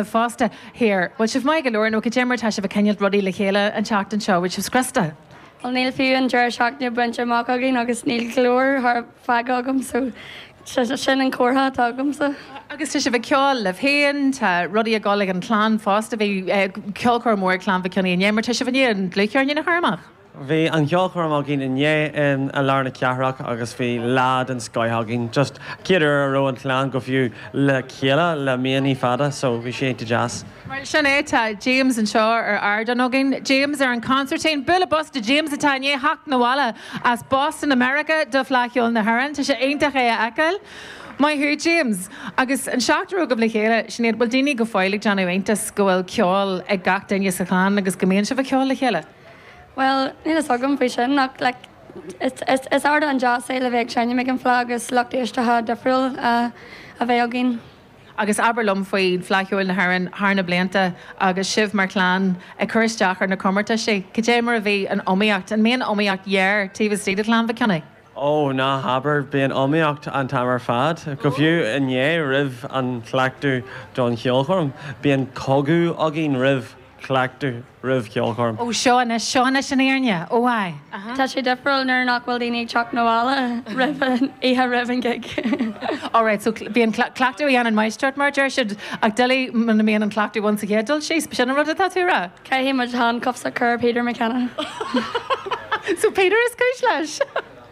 fosta. Here, bhfuil sibh maith go leor nó go deimhin mar tá sibh ag coinnilt rudaí le chéile an tseachtain seo, bhfuil sibh scriosta? Bhuel níl fiú an deireadh seachtaine bainte amach againn agus níl go leor tharat feadh agamsa sin an comhartha atá agamsa. Agus tá sibh ag ceol libh féin, tá rudaí ag dul ag an chlann fosta, bhí ceolchoirm mhór ag clann Mhic Cionnaith inné mar tá sibh i ndiaidh an dlúthcheirnín nua a chur amach? Bhí an cheolchoirm againn inné i lár na cathrach agus bhí lá den scoith againn. Just chéad uair a raibh an chlann go fiú le chéile le míonnaí fada so bhí sé iontach deas. Mar sin é tá James anseo ar ardán againn. James ar an consairtín. Bualadh bos do James atá i ndiaidh theacht na bhaile as Boston i Meiriceá do Fleadh Cheoil na hÉireann. Tá sé iontach é a fheiceáil. Maith thú James. Agus an seachtar agaibh le chéile, Sinéad, bhfuil daoine go fóill ag déanamh iontas go bhfuil ceol ag gach duine sa chlann agus go mbíonn sibh a cheol le chéile? Bhuel, níl fhios agam faoi sin ach like is ardán deas é le bheith ag seinm ag an Fleadh agus lucht éisteachta difriúil a bheith againn. Agus abair liom faoi Fleadh Cheoil na hÉireann thar na blianta agus sibh mar chlann ag cur isteach ar na comórtaisí, cad é mar a bhí an iomaíocht, an mbíonn iomaíocht ghéar taobh istigh de Chlann Mhic Cionnaith? Ó, ná habair, bíonn iomaíocht an t-am ar fad, go fiú inné roimh an chleachtadh don cheolchoirm. Bíonn cogadh againn roimh cleachtadh, roimh ceolchoirm. Ó, seo anois, seo anois an fhírinne. Ó, aye, uh-huh. Tá sé difriúil nuair nach bhfuil daoine ag teacht na bhaile roimh an, oíche roimh an gig. Ó, right, so bíonn cleachtadh a dhéanann máistreacht mar a deir siad, ach doiligh muna mbíonn an cleachtadh ann sa chéad dul síos, b'shin an rud atá tú a rá? Caithfidh muid handcuffs a chur ar Peter McKenna. So Peter is cúis leis?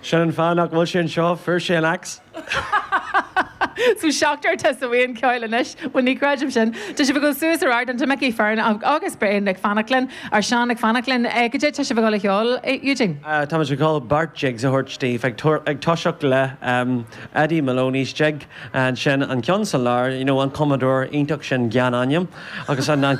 Sin an fáth nach bhfuil sé anseo, fuair sé an axe. So seachtar atá sa bhuíon ceoil anois, bhuel ní chreidim sin. Tá sibh ag dul suas ar ardán. Tá Micí Fearn agus Brian ag fanacht linn, or Seán ag fanacht linn. Goidé tá sibh ag dul a cheol, Eugene? Tá muid ag dul beirt jigs a thabhairt daoibh, ag ag toiseacht le Eddie Maloney's jig, ansin an ceann sa lár, you know an cumadóir iontach sin Gyan Anam agus an.